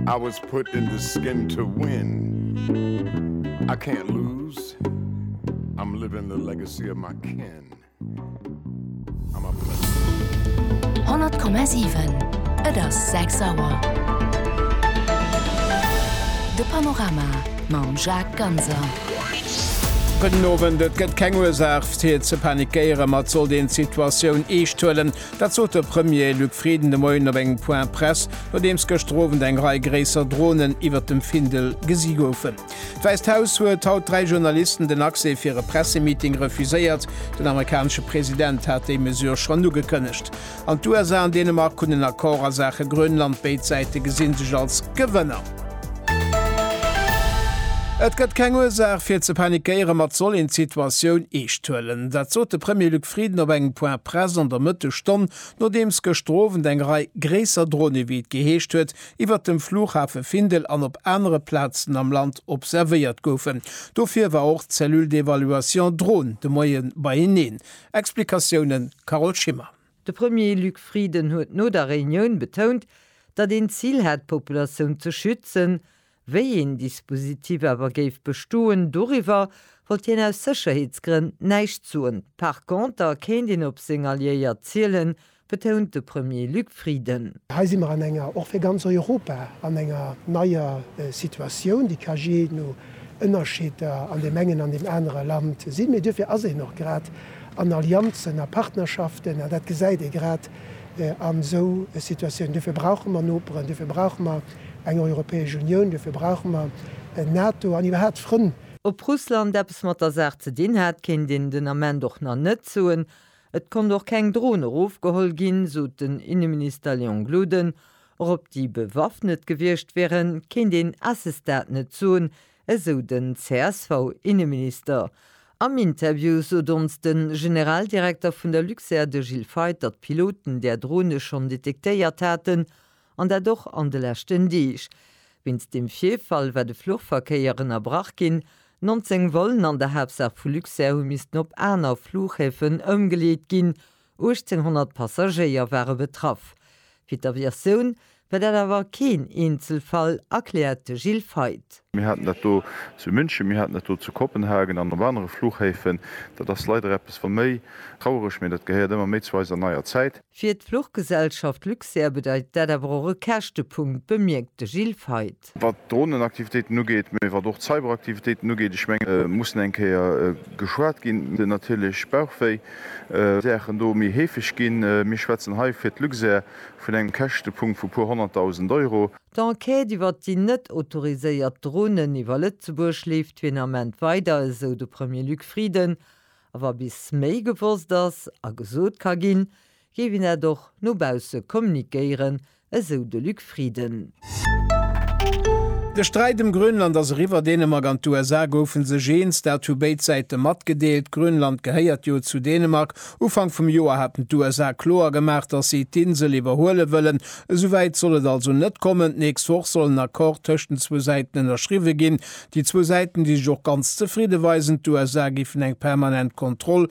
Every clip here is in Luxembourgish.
I was put in the skin to win I can't lose I'm living the legacy of my kin I'm a blessing. 100,7 Et ass 6 Auer. De Panorama mam Jacques Ganser. Gudden Owend. Et gëtt keng Ursaach fir ze panikéieren, ma et sollt een d'Situatioun eescht huelen. Dat sot de Premier Luc Frieden de Moien op engem Point Presse, nodeems gëschter Owend eng Rei gréisser Dronen iwwert dem Findel gesi goufen. D'Wäisst Haus huet haut dräi Journalisten den Accès fir e Pressemeeting refuséiert. Den amerikanesche President hat déi Mesure schonn ugekënnegt. An d'USA an Dänemark hunn en Accord a Saache Grönland, béid Säite gesi sech als Gewënner. Et gëtt keng Ursaach fir ze panikéieren, ma et soll een d'Situatioun eescht huelen. Dat sot de Premier Luc Frieden op engem Point Presse an der Mëttesstonn, nodeems gëschter Owend eng Rei gréisser Drohne, ewéi et geheescht huet, iwwert dem Flughafe Findel an op anere Plazen am Land observéiert goufen. Dofir war och d'Cellule d'évaluation Drone de Moie beieneen. Explikatiounen, Carole Schimmer. De Premier Luc Frieden huet no der Reunioun betount, datt een d'Zil hätt d'Populatioun ze schützen. Wéi een Dispositif awer géif bestoen, doriwwer wollt hien aus Sécherheetsgrënn näischt soen. Par conter kéint een op seng Alliéiert zielen, betount de Premier Luc Frieden. Hei si mer an enger, och fir ganz Europa, an enger neier Situatioun, déi ka jee no Ënnerscheeder an deem engen an deem anere Land sinn, mee duerfir ass een och grad, an Allianzen a Partnerschaften, an dat gesäit ee grad an esou Situatiounen. Duerfir brauche mer Noperen, duerfir brauche mer eng Europäesch Unioun, duerfir brauche mer NATO an iwwerhaapt Frënn. Ob Russland eppes mat der Saach ze dinn hat, kéint een den Ament och nach net soen. Et konnt och keng Dron erofgeholl ginn, sot den Inneminister Léon Gloden. Och ob déi bewaffnet gewiescht wieren, kéint een à ce stade net soen, Esou den CSV-Inneminister. Am Interview sot ons de Generaldirekter vun der Luxair, de Gilles Feith, datt d'Piloten där Drone schonn detektéiert haten, an dat och an de leschten Deeg. Wéinst deem Virfall war de Fluchverkéier ënnerbrach ginn. 19 Vollen an der Haaptsaach vu Luxair hu missten op aner Flughäfen ëmgeleet ginn. 1.800 Passagéier ware betraff. Fir d'Aviatioun war dat awer keen Eenzelfall, erkläert de Gilles Feith. Mir haten dat do zu München, mir haten dat do zu Kopenhagen an op anere Fluchhäfen. Dat ass leider eppes wa méi trauereg, mee dat gehéiert ëmmer méi zu eiser neier Zäit. Fir d'Fluchgesellschaft Luxair bedeit dat awer och e Käschtepunkt, bemierkt de Gilles Feith. Stad. Wat d'Drohnenaktivitéiten ugeet, mee wat och d'Cyberaktivitéiten ugeet, ech mengen, et muss eng Kéier geschwat ginn, et gëtt natierlech Bauchwéi, well déi Saachen do méi heefeg ginn. Mir schwätzen hei fir d'Luxair vun engem Käschtepunkt vu puer honnertdausend Euro. D'Enquête iwwert déi net autoriséiert Dronen iwwer Lëtzebuerg leeft fir den Ament weider, esou de Premier Luc Frieden. A wa bis méi gewosst ass a gesot ka ginn, géif een dat och no bausse kommuniquéieren, esou de Luc Frieden. De Sträit ëm Grönland ass eriwwer. Dänemark an d'USA goufe sech eens, dat hu béid Säite matgedeelt. Grönland gehéiert jo zu Dänemark. Ufank vum Joer haten d'USA kloer gemaach, datt si d'Insel iwwerhuele wëllen. Esou wäit soll et also net kommen. D'nächst Woch soll en Accord tëscht den zwou Säiten ënnerschriwwe ginn. Déi zwou Säiten, déi sech och ganz zefridde weisen. D'USA géifen eng permanent Kontroll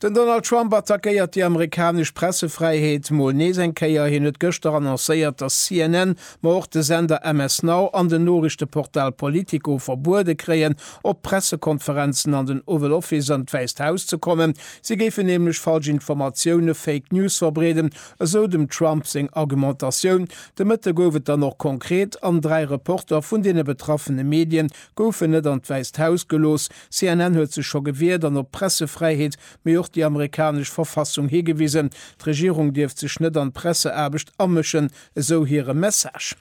Den Donald Trump attackéiert déi amerikanesch Pressefräiheet mol nees eng Kéier. Hien huet gëschter annoncéiert, datt CNN, ma och de Sender MS Now an den Noriichteportal Politico verbuede kréien, op Pressekonferenzen an den Oval Office an d'Wäisst Haus ze kommen. Si géifen nämlech falsch Informatioune, Fake News, verbreeden, esou dem Trump seng Argumentatioun. De Mëtte gouf et dann och konkret an dräi Reporter vun deene betraffene Medie goufen net an d'Wäisst Haus gelooss. CNN huet sech scho gewiert an op d'Pressefräiheet, mee och déi amerikanesch Verfassung higewisen. D'Regierung dierft sech net an d'Presseaarbecht amëschen, esou hire Message.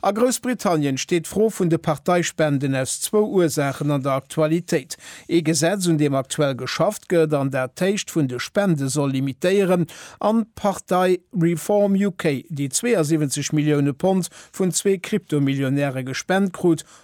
A Groussbritannien steet d'Fro vun de Parteispenden aus zwou Ursaachen an der Aktualitéit. Ee Gesetz, un deem aktuell geschafft gëtt an dat d'Héicht vun de Spende soll limitéieren, an d'Partei Reform UK, déi 72 Millioune Pond vun zwee Kryptomillionäre gespent krut,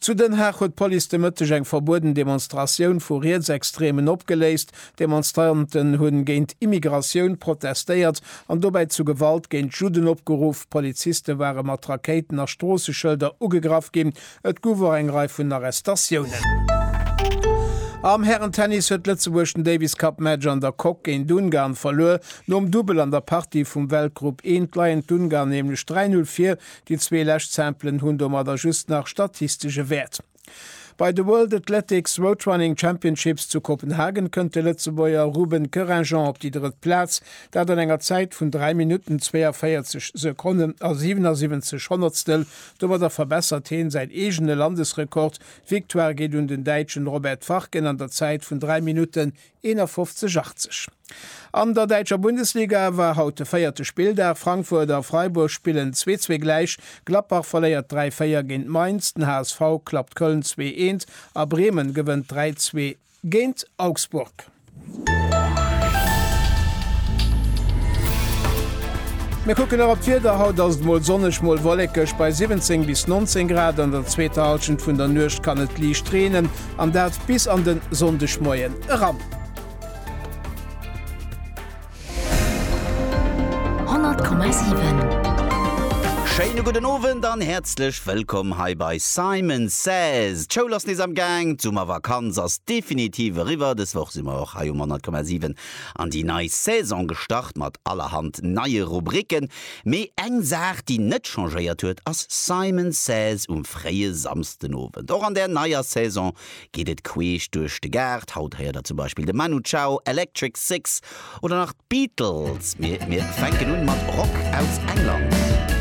Zu Den Haag huet d'Police de Mëtteg eng verbueden Demonstratioun vu Rietsextreemen opgeléist. D'Demonstranten hunn géint Immigratioun protestéiert an dobäi zu Gewalt géint Judden opgeruff. Poliziste ware mat Rakéiten a Stroosseschëlder ugegraff ginn. Et gouf och eng Rei vun Arrestatiounen. Am Hären-Tennis huet Lëtzebuerg den Davis-Cup-Match an der Coque géint Ungarn verluer. Nom Dubbel an der Partie vum Weltgrupp I leien d'Ungar nämlech 3-0 vir Déi zwee lescht Samplen hunn domadder just nach statistesche Wäert. Bei de World Athletics Road Running Championships zu Kopenhagen kënnt de Lëtzebuerger Ruben Kerrinjean op déi drëtt Plaz, dat an enger Zäit vun 3 Minutten 42 Sekonnen a 77 Honnertstel. Domadder verbessert heen säin eegene Landesrekord. D'Victoire geet un den Däitschen Robert Farken an der Zäit vun 3 Minutten 51 80. An der däitscher Bundesliga war haut de véierte Spilldag. Frankfurt a Freiburg spillen 2 zwee gläich, Gladbach verléiert 3 4 géint Mainz, den HSV klappt Köln 2 eent a Bremen gewënnt 3 zwee géint Augsburg. Mir kucken nach op d'Wieder, Haut ass et mol sonneg, mol wollekeg bei 17 bis 19 Grad. An der zweeter Hallschent vun der Nuecht kann et liicht reenen, An dat bis an den Sonndegmoien eran. 100,7. Schéine gudden Owend an häerzlech wëllkomm hei bei Simon Says. D'Schoul ass nees am Gaang, d'Summervakanz ass definitiv eriwwer. Dës Woch si mer och hei um 100,7 an déi nei Saison gestart mat allerhand neie Rubricken. Mee eng Saach, déi net changéiert huet, ass Simon Says um fréie Samsdenowend. Och an der neier Saison geet et queesch duerch de Gaart. Haut héiert der zum Beispill de Manu Chao, Electric Six oder nach d'Beatles. Mee mir fänken un mat Rock aus England.